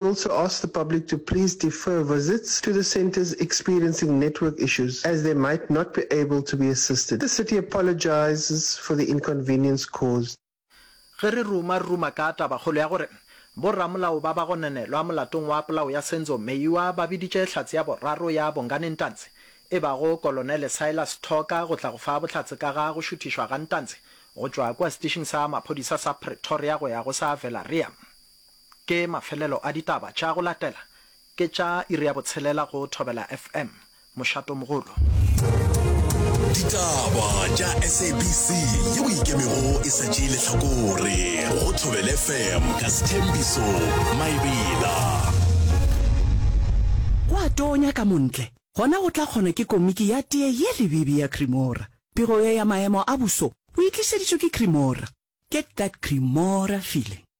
He also asked the public to please defer visits to the centres experiencing network issues as they might not be able to be assisted. The city apologises for the inconvenience caused. Ge re ruma, re ruma ka tabakgolo ya gore boramolao ba bagononelwa molatong wa polao ya Senzo Meyiwa ba biditše Hlatse ya Boraro ya Bongani Ntantsi, e bago Kolonele Silas Thoka go tla go fa bohlatse ka ga go šuthišwa ga Ntantsi go tšwa kua setišing sa maphodisa sa Pretoria go ya go sa Velaria. Ke mafelelo a ditaba tša go latela ke tša iri ya botshelela go Thobela FM, Mošatomogolo. Ditaba tša SABC ye o ikemego e sa tšee lehlakore go Thobela FM ka Sethembiso Maebela. Go a tonya ka montle, gona go tla kgona ke komiki ya tee ye lebibi ya Cremora. Pego ye ya maemo a buso o e tlišeditšwe ke Cremora. Get that Cremora feeling.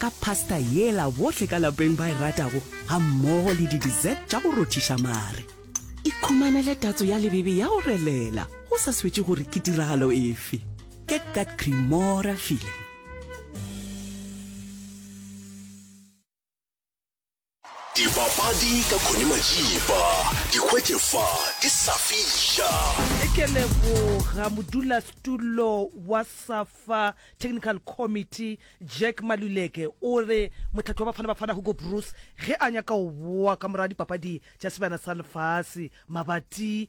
ka pasta yela bohle ka lapeng ba e ratago ga mmogo le di-dessert tša go rothiša mare ikhumanele tatso ya lebebe ya go relela go sa swetše gore ke tiragalo efe get that cremora feeling Dibapadi ka Connie Majiba, di hwetše fa di sa fiša. Mme ke a leboga modulasetulo wa safa technical committee jack maluleke o re mohlathi wa bafana bafana hugo bruce ge a nyaka go boa ka morago dipapadi tša sebjana sa lefase mabati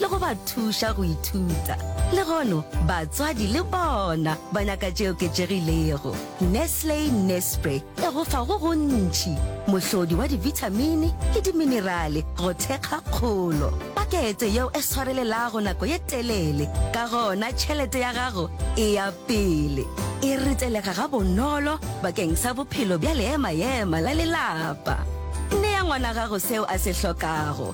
le go ba thuša go ithuta. Legono batswadi le bona ba nyaka tše oketšegilego. Nestle Nespre e go fa go gontši, mohlodi wa dibithamini le diminerale go thekga kgolo. Pakete yeo e swarelelago nako ye telele, ka gona tšhelete ya gago e ya pele. E ritelega gabonolo bakeng sa bophelo bja leema-ema la lelapa. Nea ngwana gago seo a se hlokago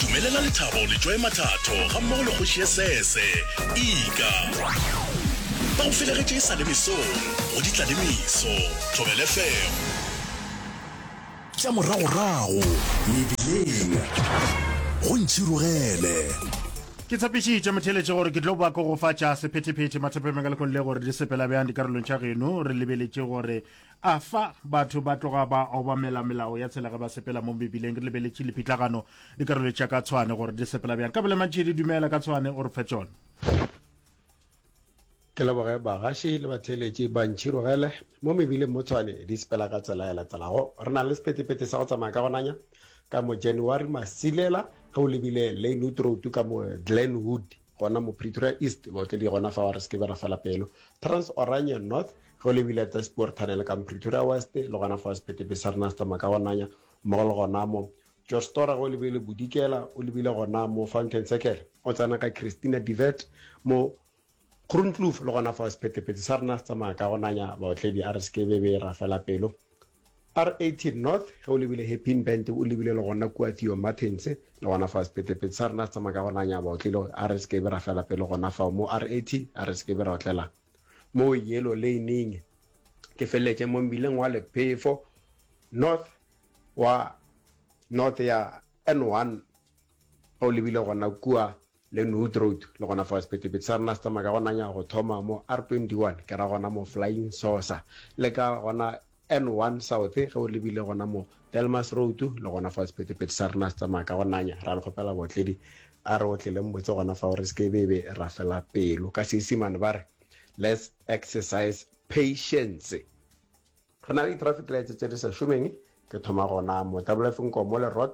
Dumelela lethabo le tšoe mathatho gammogo le kgoši ye sese. Ika. Ba go felegetše e sa le mesong go ditlalemiso. Thobele fm. Tša moragorago mebileng go ntšhirogele. Ke tshepišitše motheeletši gore ke tlo ba ko go fa tša sephethephethe mathopemengwalekong le gore di sepela bjang dikarolong tša geno. Re lebeletše gore A fa batho ba tloga ba obamela melao ya tshela ge ba sepela mo mebileng? Re lebeletše lepitlagano dikarolo tša ka tshwane gore di sepela bjang. Kabele Matšhedi, dumela ka tshwane o re fe tšone. Ke leboge bagaši le batheeletši ba Ntšhirogele. Mo mebileng mo Tshwane di sepela ka tsela e latelago. Re na le sepetepete sa go tsamaya ka go nanya ka mo January Masilela ge o lebile Lane Wood Road ka mo Glenwood. Gona mo Pretoria East, baotledi gona fao re se ke be ra fela pelo. Trans Oranje North, ge o lebile tsa Spoor Tunnel ka mo Pretoria West, le gona fao sepetepe sa rena se tsamaya ka gonanya, mmogo le gona mo George Tora ge o lebile Bodikela, o lebile gona mo Fountain Circle, o tsena ka Christina de Wet mo Groenkloof, le gona fao sepetepete sa rena se tsamaya ka gonanya, baotledi a re se ke be be ra fela pelo. RAT North, ge o lebile Hepin Band o lebile le gona kua Theo Martins, le gona fao sephethephethe sa rena se tsamaya ka go nanya ba otlile gore a re se ke be ra fela pelo gona fao mo RAT, a re se ke be ra otlela mo Yellow Lane-ing ke feleletše mo mbileng wa Lephefo North wa North ya N1 ge o lebile gona kua Le Nood Road, le gona fao sephetephete sa rena se tsamaya ka go nanya go thoma mo R21, ke ra gona mo Flying Saucer, le ka gona N1 South ge o lebile gona mo Delmas Road, le gona fao sephetephete sa rena se tsamaya ka go nanya. Ra le kgopela baotledi a re otleleng botse gona fao re se ke be be ra fela pelo. Ka Seisimane ba re, Let's exercise patience. Re na le di-traffic lights tse di sa šomeng, ke thoma gona mo Tabolefenko mo le Road,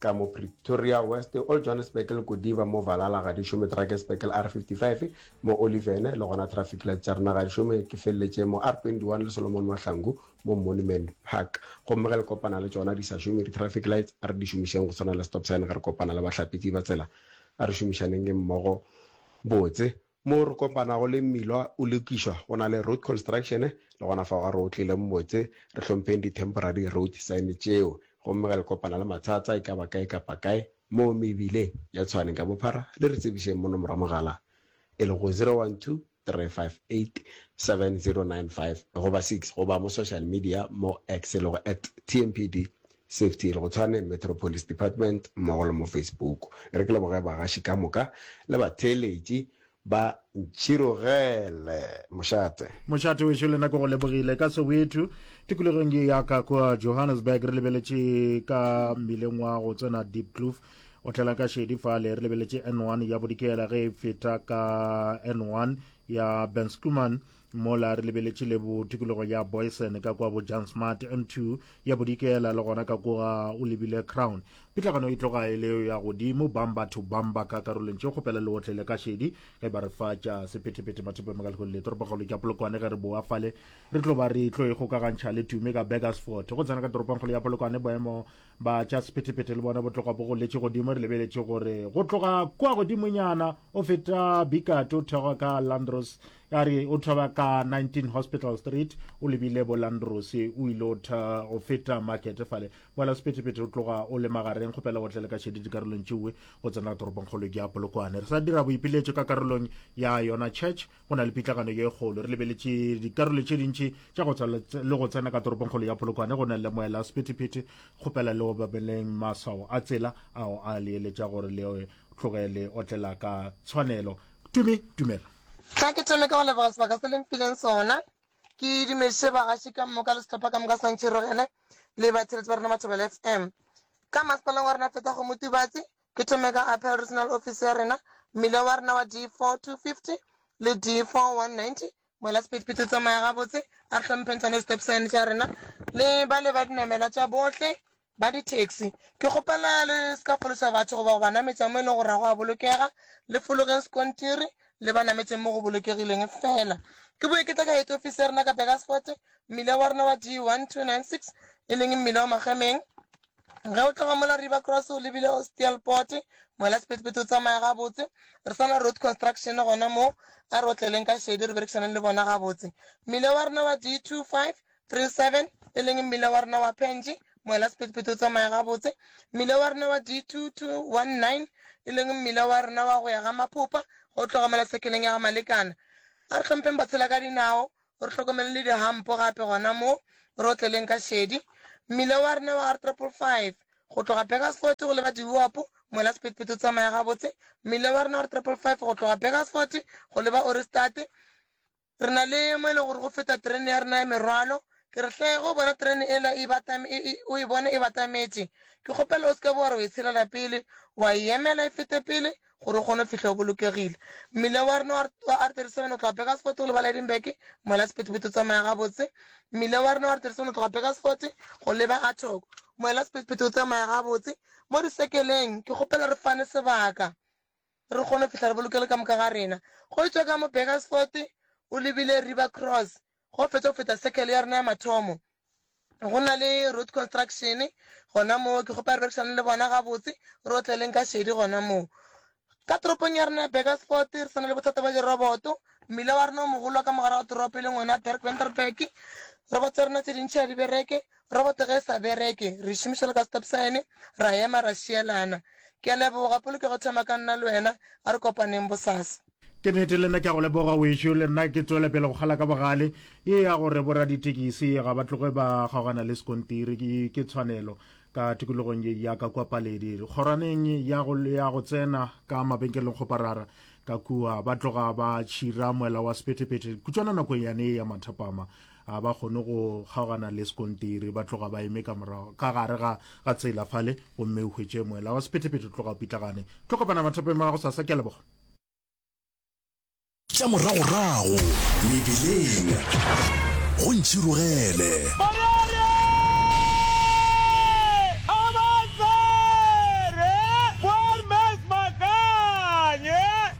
ka mo Pretoria West, Old Johannesburg le Godiva mo Valala ga di šome, Drakensburg le R55 mo Olivene le gona traffic lights tša rena ga di šome, ke feleletše mo R21 le Solomon Mahlangu mo Monument Park. Gomme ge le kopana le tšona di sa šome di-traffic lights, a re di šomišeng go swana le stop sign ge re kopana le bahlapetši ba tsela, a re šomišaneng mmogo botse. Mo re kopanago le mmilwa o lokišwa go na le road construction le gona fao ga re otleleng motse, re hlompheng di temporary road sign tšeo gomme ge le kopana le mathata e ka ba kae kapa kae mo mebile ya Tshwane ka bophara le re tsebišeng mo nomoro ya mogala e lego 0123587095 goba 6 goba mo social media mo X e lego at TMPD Safety e lego Tshwane Metro Police Department mmogo le mo Facebook. E re ke leboge bagaši ka moka le batheeletši ba Ntšhirogele Mošate. Mošate wešo le nna ke go lebogile. Ka Soweto, tikologong ye ya ka kua Johannesburg, re lebeletše ka mmileng wa go tsena Diepkloof. O tlela ka šedi fale, re lebeletše N1 ya Bodikela ge e feta ka N1 ya Benskuman. mola re lebeletše lebo tikologo ya boysen ka kwa bojansmart m2 ya bodikela le gona ka koga o lebile crown pitlagano e tloga e leo ya godimo bamba to bamba ka karolong tše kgopela le otlele ka šedi ge ba re fa tša sephethephethe mathopeng makalekgolo le toropokgolo tša polokwane ge re boa fale re tlo ba re tlo e kgokagantšha le tume ka begersfort go tsena ka toropongkgolo ya polokwane boemo ba tša sephethephethe le bona bo tloga bo goletše godimo re lebeletše gore go tloga kwa godimonyana o feta bikato thego ka landros ya re o thaba ka 19 hospital street o lebile bolandrose o ile o tha go feta market fale mola sephethephethe o tloga o le magareng go pela o tlele ka šedi dikarolong tšeuwe go tsena toropongkgolo ke ya polokwane re sa dira boipiletšo ka karolong ya yona church go na le pitlagano ye kgolo re lebeletše dikarolo tše dintši tša go le go tsena ka toropongkgolo ya polokwane go na le moela sephethephethe kgopela le obabeleng maswao a tsela ao a leeletša gore le tlogele otlela ka tshwanelo tume tumela Ga ke thome ka go leboga sebaka se le mphileng sona. Ke dumediše bagaši ka moka le sehlopha ka moka sa Ntšhirogele le batheletši ba rena ba Thobela FM. Ka masepaleng wa rena Fetsa go Motubatsi, ke thome ka Apel Regional Office ya rena, mmileng wa rena wa D4 250 le D4 190. Mola sephethephethe o tsamaya gabotse, a re hlompheng tsone stop sign tša rena. Le ba le ba dinamela tša bohle, Ba di-taxi, ke kgopela le se ka fološa batho goba go ba nametša mo e lego gore ga go a bolokega, le fologeng sekontiri, le ba nametšeng mo go bolokegileng. Efela, ke boe ke tle ka head ofisi ya rena ka Burgersfort, mmila wa rena wa D1296, e leng mmila wa Magemeng. Ge o tloga mola River Cross o lebile Ostealpoort, moela sephetephethe o tsamaya gabotse. Re sa na Road Construction gona moo, a re otleleng ka šedi re berekišaneng le bona gabotse. Mmila wa rena wa D25, Trail 7, e leng mmila wa rena wa phentši, moela sephethephethe o tsamaye gabotse. Mmila wa rena wa D2219, e leng mmila wa rena wa go ya ga Maphopa, ge o tloga mola sekeleng ya ga Malekana. A re hlompheng batshela ka dinao, re hlokomeleng le dihampo gape gona mo, re otleleng ka šedi. Mmila wa rena wa R555, go tloga Burgersfort go leba Dihuopo, moela sephethephethe o tsamaye gabotse. Mmila wa rena wa R555, go tloga Burgersfort go leba Ohrigstadt, Re na le mo e le gore go feta terene ya rena ya merwalo. Ke re hle ge o bona terene ela e batame, e, e, o e bone e batametše, ke kgopela o se ke be wa re o e tshelela pele, wa e emela e fete pele, gore o kgone go fihla o bolokegile. Mmila wa rena wa, wa R 37 go tloga Bakersfort go leba Lydenburg, mola sephethephethe o tsamaya gabotse. Mmila wa rena wa R 37 go tloga Bakersfort go leba Athogo, mola sephethephethe o tsamaya gabotse. Mo disekeleng, ke kgopela re fane sebaka. re kgone go fihla re bolokegile ka moka ga rena. Go e tšwa ka mo Burgersfort o lebile River Cross, ge o fetša go feta circle ya rena ya mathomo, go na le Road Construction gona moo. Ke kgopa re berekisane le bona gabotse, re otleleng ka šedi gona moo. Ka toropong ya rena ya Burgersfort re sa na le bothata bja diroboto. Mmila wa rena o mogolo wa ka mogare ga toropo e leng wona Bergventer Berg, roboto tša rena tše dintši ga di bereke, Roboto ge e sa bereke, re šomiša le ka stop sign, ra ema, ra šielana. Ke a leboga, polokego e thoma ka nna le wena, a re kopaneng bosasa. Ke nete, le nna ke a go leboga wešu. Le nna ke tswele pele go kgala ka bogale. Ye ya gore boraditekisi ga ba tloge ba kgaogana le sekontiri ke, ke tshwanelo. Ka tikologong ye ya ka kua Paledi, kgorwaneng ya go, ya go tsena ka mabenkeleng kgoparara ka kua, ba tloga ba tšhira moela wa sephethephethe kutšwana nakong yane ye ya mathapama. ga ba kgone go kgaogana le sekontiri ba tloga ba eme ka morago ka gare ga ga tsela fale gomme o hwetše moela wa sephetephete tloga o pitlagane tlo kopana mathapeng mago sasa ke a leboga tša moragorago mebileng go ntšhirogele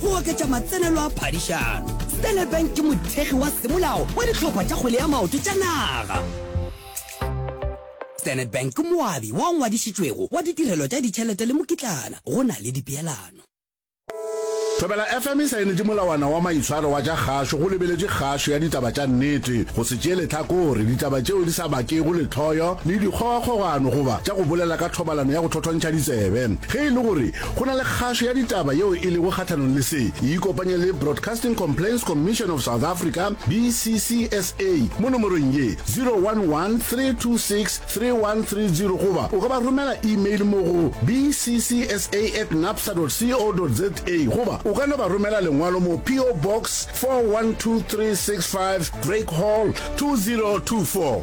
go oketša matsenelo a phadišano standard bank ke mothekgi wa semolao wa ditlhopha tša kgwele ya maoto tša naga standard bank ke moabi wa ngwadišitšwego wa ditirelo tša ditšhelete le mokitlana go na le dipeelano Thobela FM e saenetše molawana wa maitshwaro wa tša kgašo go lebeletše kgašo ya ditaba tša nnete, go se tšee lehlakore, ditaba tšeo di sa bakego lehloyo le dikgogakgogano goba tša go bolela ka thobalano ya go thothontšha ditsebe. Ge e le gore Go na le kgašo ya ditaba yeo e lego kgathanong le se, e ikopanye le Broadcasting Complaints Commission of South Africa, BCCSA, mo nomorong ye, 011-326-3130 goba o ka ba romela email mo go bccsa at napsa dot co dot za goba o ka no ba romela lengwalo mo PO Box 412365 Drakehall 2024.